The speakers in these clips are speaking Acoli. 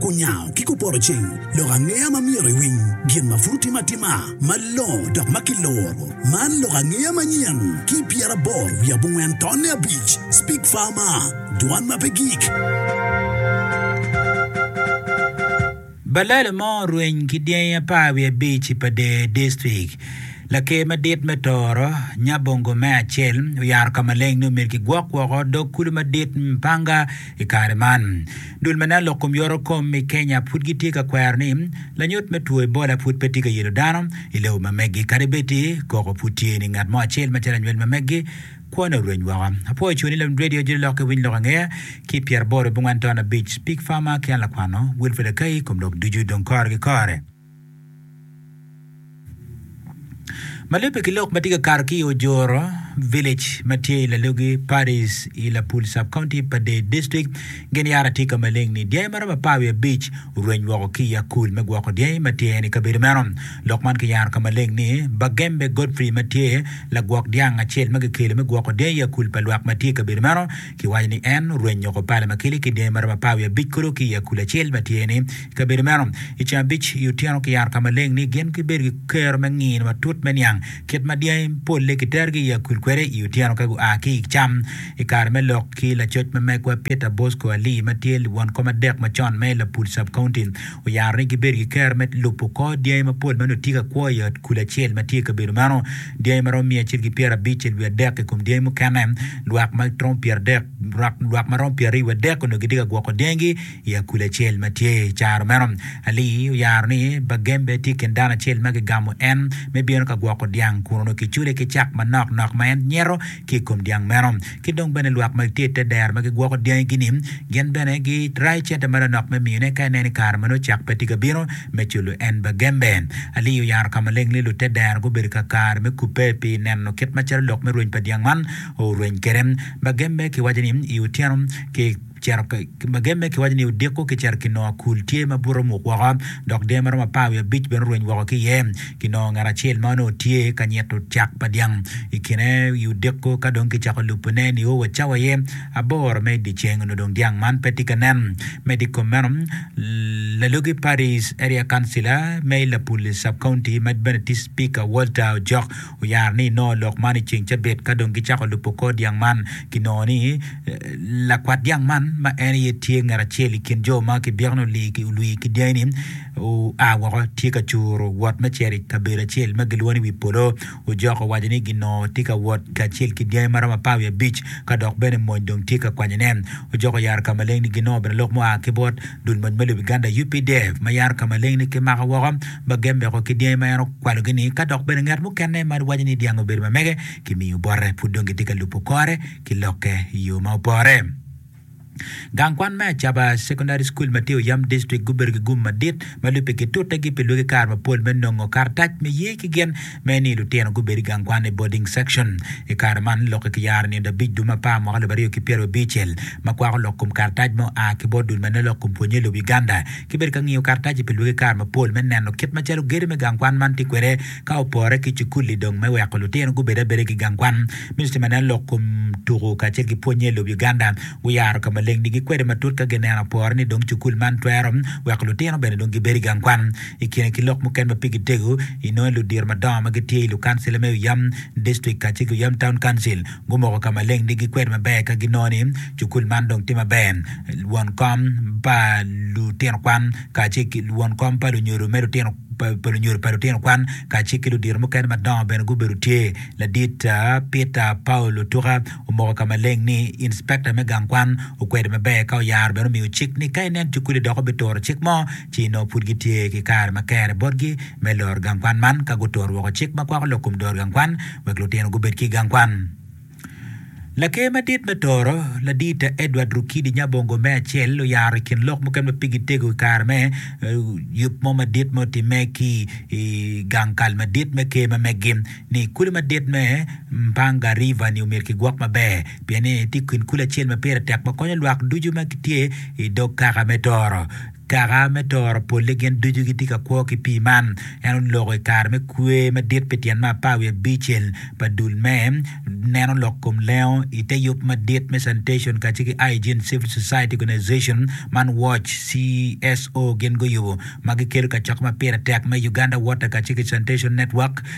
Kunyango ki kupoto ceng lok angeya ma myero iwiny gin ma pud otime atima malongo dok ma kiloro. Man lok angeya manyen ki i pyeraboro wiye abongwen tonne abic, Speak Farmer, Dwan ma pe gik. Balele mo orweny ki dyangi apar wiye abic i Pader District. Laker madit me Tooro, Nyabongo me acel, oyaro ka maleng ni omyero kigwok woko dog kulu madit Mpanga, I kare man, dul ma nen lok kom yoro kom i Kenya pud gitye ka kwero ni lanyut me two Ebola pud pe tye ka yelo dano i lobo ma megi. Kadi bed ni koko pud tye ni ngat mo acel macalo anywel ma megi, kwone orweny woko. Apwoyo coni lum Radio Jiri Lok ki Winy Lok Angeya ki pyeraboro bongwen ton abic, Pig Farmer ki an lakwano Wilfred Akai i kom lok ducu dong kore ki kore. Ma lubbe ki lok ma tye ka kato ki i Ojoro village ma tye i Lalogi Paddy's i Lapul Sub-County pa Dade District, gin yat atika maleng ni dyangi ma romo apar wiye abic orweny woko ki i akul me gwoko dyangi ma tye i kabedo meno. Lok man kiyaro ka maleng ni Bagembe Godfrey ma tye lagwok dyang acel ma kikelo me gwoko dyangi i akul pa lwak ma tye i kabedo meno. Kiwaco ni en orwenyo oko pala ma kele ki dyangi ma romo apar wiye abic kodo ki i akuli acel ma tye ni i kabedo meno. I ceng abic i otyeno kiyaro ka maleng ni gin gibedo ki kero me ngino matut me niang kit ma dyangi polle kiterogi i akuli kwede i otyeno ka gua ki i cam. I kare me lok ki lacoc ma megwa Peter Bosco Ali ma tyeliwon kom adek macon me Lapul Sub-County, Oyaro ni gibedo ki kero me lubo kor dyangi mapol ma nongo tye ka kwo i ot kul acel ma tye i kabedo meno. Dyangi ma romo miya acel ki pyerabic i wiye adek i kom dyangi mukene. Lwak ma romo pyeradek, lwak ma romo pyeraryo wiye adek onongo gitye ka gwoko dyangigi i akul acel ma tye i caro meno. Ali oyaro ni Bagembe tye i kin dano acel ma gigamo en me bino ka gwoko dyang kun onongo kicule ki cak manok nok ma en nyero ki i kom dyang meno. Ki dong bene lwak ma gitye i te dero ma gigwoko dyangigi-ni, gin bene girayo cente ma lanok me miyone ka ineno i kare ma nongo cak pe tye ka bino me culo en bagembe. Ali oyaro ka maleng ni lute dero gubedo kakare me kubbe pi neno kit macalo lok me rweny pa dyang man orweny kwede. Bagembe kiwaco ni i otyeno ki Cito pe ki mageme, kiwaco ni odiko kicito ki nongo akul tye ma bute omuk woko dok dee ma romo apar wiye abic bene orweny woko ki iye. Kinongo ngat acel ma onongo tye ka nyito cak pa dyang i kine i odiko ka dong kicako lubone nio wa cawa aye aboro me dye ceng onongo dong dyang man pe tye ka nen. Medo i kom meno, Lalogi Paddy's Area Councilor me Lapuli Sub-County ma bene tye Cipika Walter Ojok oyaro ni inongo lok man i ceng cabit ka dong gicako lubo kor dyang man, kinongo ni lakwat dyang man ma en aye tye ngat acel i kin jo ma kibyekoni olwii ki dyangi-ni oa woko tye ka curo wot me cito i kabedo acel ma gilwongo ni wi polo. Ojok owaco ni ginongo tye ka wot kacel ki dyangi maromo apar wiye abic ka dok bene mony dong tye ka kwanyone. Ojok oyaro ka maleng ni ginongo bene lok mua ki bot dul mony me lobo Uganda, UPDF, ma yaro ka maleng-ni ki maka woko. ma gen meko ki dyangi ma en okwalogi-ni, ka dok bene ngat mukene ma waco ni dyang obedo ma mege kimiyo bote, pud dong gitye ka lubo kore ki lokke i yo ma opore. Gang kwan me Acaba Secondary School ma tye i Oyam District gubedo ki gum madit ma lubbe gitutegi pi lwaki kare mapol me nongo karatac me ye ki gin me ni lutino gubed i gang kwan i boarding section. I kare man, lokke ki yaro nino abic dum apar mwaka alip aryo ki pyero abicel, ma kwako lok kom karatac ma oa ki bot dul ma neno lok kom pwonye i lobo Uganda, ki bedo ka ngiyo karataci pi lwaki kare mapol me neno kit macalo gedo me gang kwan man tye kwede ka opore ki cukul-li dong me weko lutino gubed abeda ki gang kwan. Ministry ma neno lok kom tuku kacel ki pwonye i lobo Uganda guyaro ka maleng-nigi kwede matut ka gineno apore ni dong cukul man twero weko lutino bene dong gibed i gang kwan. I kine ki lok mukene ma pigi tego, inongo ludito madongo ma gitye i lukancil me oyam dictrik kacel ki oyam taun kancil gumoko ka maleng ni gikwedo maber ka ginongo ni cukul man dong tye maber. Won kom pa lutino kwan kacel ki won kom pa lunyodo me lutino pa lunyodo pa lutino kwan kacel ki ludito mukene madongo bene gubedo tye. Ladit Peter Paul Otuka omoko ka maleng ni inspecta me gang kwan okwedo maber ka oyaro bene omiyo cik ni ka inen cukuli dok obituro cik mo ci nongo pud gitye ki kare ma kere botgi me loro gang kwan man ka guturo woko cik ma kwako lok kom dor gang kwan wek lutino gubed ki i gang kwan. Laker madit me Toro, Ladita Edward Rukidi Nyabongo me acel oyaro i kin lok mukene ma pigi tego i kare me yub mo madit ma otimme ki i gang kal madit me ker ma meggi ni kuli madit me Mpanga River ni omyero kigwok maber. pien eni tye kin kulu acel ma pire tek ma konyo lwak ducu ma gitye i dog kaka me toro. Kaka me toro polle gin ducu gitye ka kwo ki pii man. En oloko i kare me kwe madit pi tyen me apar wiye abicel pa dul me neno lok kom lengo i te yub madit me sanitation kacel ki Hygiene Civil Society Organization man Watch, CSO, gin guyubo ma gikelo kacok ma pire tek me Uganda Water kacel ki Sanitation Network.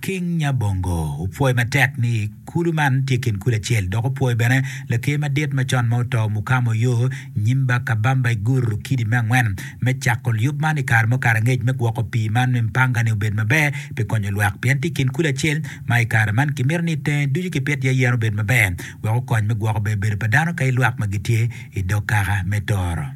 King Nyabongo opwoyo matek ni kulu man tye kin kulu acel dok opwoyo bene Laker madit macon ma oto Mukama Oyoo Nyimba Kabamba I Guru Kidi me angwen me cako lyub man I kare mukato angec me gwoko pii man I mpanga ni obed maber pi konyo lwak pien tye kin kulu acel ma I kare man kimito ni tenge ducu kipit iye yen obed maber wek okony me gwoko bebedo pa dano kailwak ma gitye idog kaka me toro.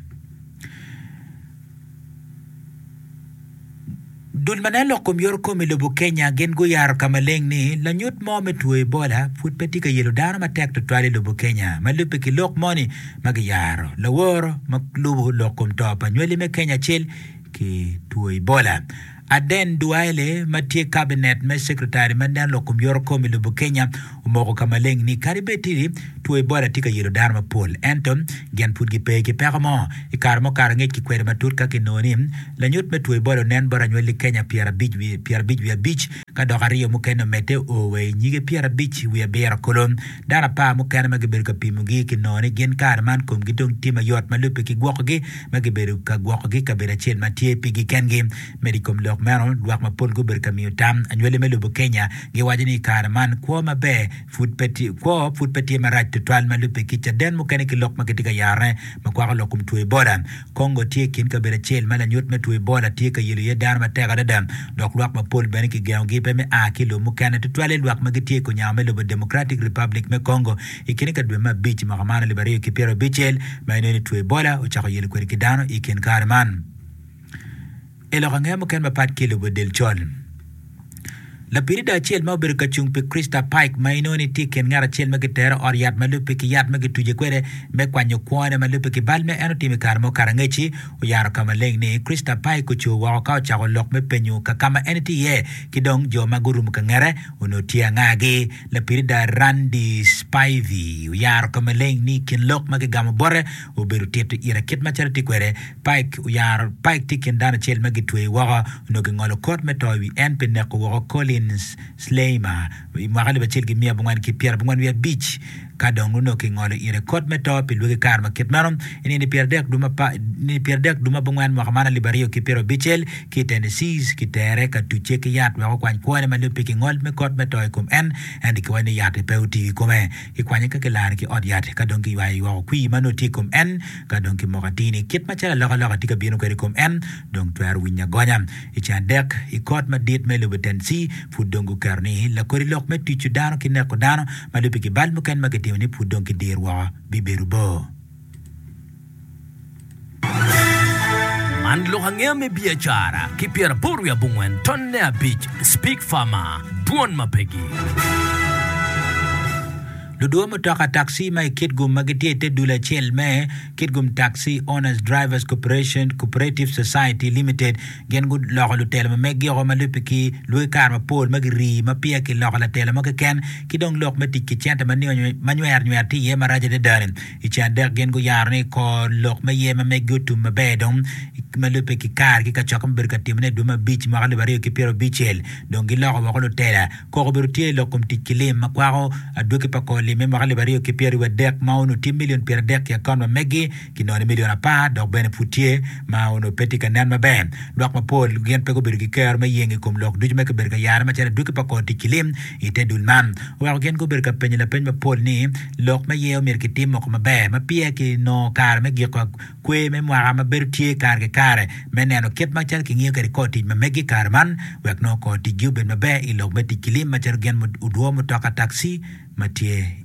Dul ma nen lok kom yoto kom i lobo Kenya gin guyaro ka maleng ni lanyut mo me two Ebola pud pe tye ka yelo dano matek tutwal i lobo Kenya. Ma lubbe ki lok moni ma giyaro, laworo ma lubo lok kom to pa nywali me Kenya acel ki two Ebola, Aden Duale ma tye kabinet me Secretary ma nen lokum yoro kom i lobo Kenya omoko ka maleng ni kadi bed tidi two Ebola tye ka yelo dano mapol ento gin pud gipe ki peko mo. I kare mukato angec kikwede matut ka kinongo ni lanyut me two Ebola onen bot anywali Kenya pyerabic wiye abic ka dok aryo mukene omedde o wa i nyige pyerabic wiye abiro. Kolo dano apar mukene ma gibedo ka pimogi kinongo ni gin kare man komgi dong tye mayot ma lubbe kigwokogi. ma gibedo ka gwokogi i kabedo acel ma tye pigi kengi. Medo i kom lok meno, lwak mapol gubedo ka miyo tam anywali me lobo Kenya giwaco ni i kare man kwo maber pud pe tye, kwo pud pe tye marac tutwal ma lubbe ki Caden mukene ki lok ma gitye ka yarone ma kwako lok kom two Ebola. Congo tye i kin kabedo acel ma lanyut me two Ebola tye ka yelo iye dano matek adada dok lwak mapol bene kigengogi pe me a ki i lobo mukene tutwale lwak ma gitye i kunyango me lobo Democratic Republic me Congo I kine ka dwe me abic mwaka man alip aryo ki pyera abicel ma i nene two Ebola ocako yelo kwede ki dano i kin kare man i lok angeya mukene mapat ki i lobo del col. Lapirida acel ma obedo ka cung pi Christa Pike ma inongo ni tye i kin ngat acel ma gitere ot yat ma lubbe ki yat ma gituce kwede me kwanyo kwone ma lubbe ki bal ma en otimo i kare mo Karangeci oyaro ka maleng ni Christa Pike ocur woko ka ocako lok me penyo ka ka ma en tye iye ki dong jo ma gurumo ka ngete onongo tye angagi Lapirida Randi Spivey oyaro ka maleng ni i kin lok ma gigamo bote, obedo tito ira kit macalo etye kwede. Pike oyaro, Pike tye i kin dano acel ma gitweyo woko onongo gingolo kot me to i wi en pi neko woko Collins Sleimer i mwaka alip acel ki miya abongwen ki pyera abongwen wiye abic ka dong onongo kingolo ire kot me to pi lwaki kare ma kit meno. I nino pyera adek dwe ma pyera adek dwe ma abongwen mwaka man alip aryo ki pyera abicel, ki i Tennessee, kitere ka tucce ki yat wek okwany kwone ma lubbe ki ngol me kot me to i kom en, ento kiwaco ni yat-ti pe otiyo i kome. Kikwanye ka kilare ki ot yat, ka dong kiywayo ywoko kwir ma nongo tye i kom en, ka dong ki moko atini. Kit macalo alokaloka tye ka bino kwede i kom en, dong twero winyo agonya. I ceng adek i kot madit me lobo Tennessee, pud dong guketo ni lakodi lok me tuco dano ki neko dano ma lubbe ki bal mukene ma kitimo ni pud dong kidir woko bibedo bor. Man lok angeya me biacara ki pyeraboro wiye abongwen tonne abic Speak Farmer, Dwon ma Pegi. Ludua mutoka taxi ma i Kitgum ma gitye i te dul acel me Kitgum Taxi Owners Drivers Cooperation Cooperative Society Limited gin guloko lutelo ma meggio ma lubbe ki lwagi kare mapol ma girii ma peya kiloko latela mo keken ki dong lok me tic ki cente ma nywero nywero tye iye marac adada-ni. I ce adek gin guyaro ni kor lok me yer ma megi otum maber dong ma lubbe ki kare ki kacokke mubedo ka timone i dwe me abic mwaka alip aryo ki pyero abicel dong giloko woko lutela. Koko obedo tye i lok kom tic ki lim ma kwako adwogi pa kor lim me mwaka alip aryo ki pyeraryo adek ma onongo tye milion pyeradek i akon ma megi ki nongo ni milion apar dok bene pud tye ma onongo pe tye ka nen maber. Lwak mapol gin pe gubedo ki kero me yeng i kom lok ducu ma kibedo ka yare macalo adwogi pa kor tic ki lim i te dul man, oweko gin gubedo ka penyo lapeny mapol ni, Lok ma iye omyero kitim moko maber ma peya kinongo kare me giko kwer me mwaka ma bedo tye kare ki kare me neno kit ma calo kingiyo kwede kor tic ma meggi i kare man wek nongo kor ticgi obed maber i lok me tic ki lim macalo gin odwo mutoka takci ma tye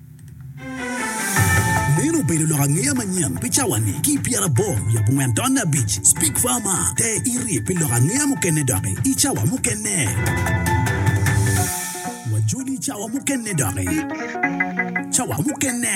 Meno obedo lok angeya manyen pi cawa-ni. Ki i pyeraboro wiye abongwen taun me abic, Speke Farmer te irye pi lok angeya mukene doki i cawa mukene. Wajoli i cawa mukene doki. Cawa mukene.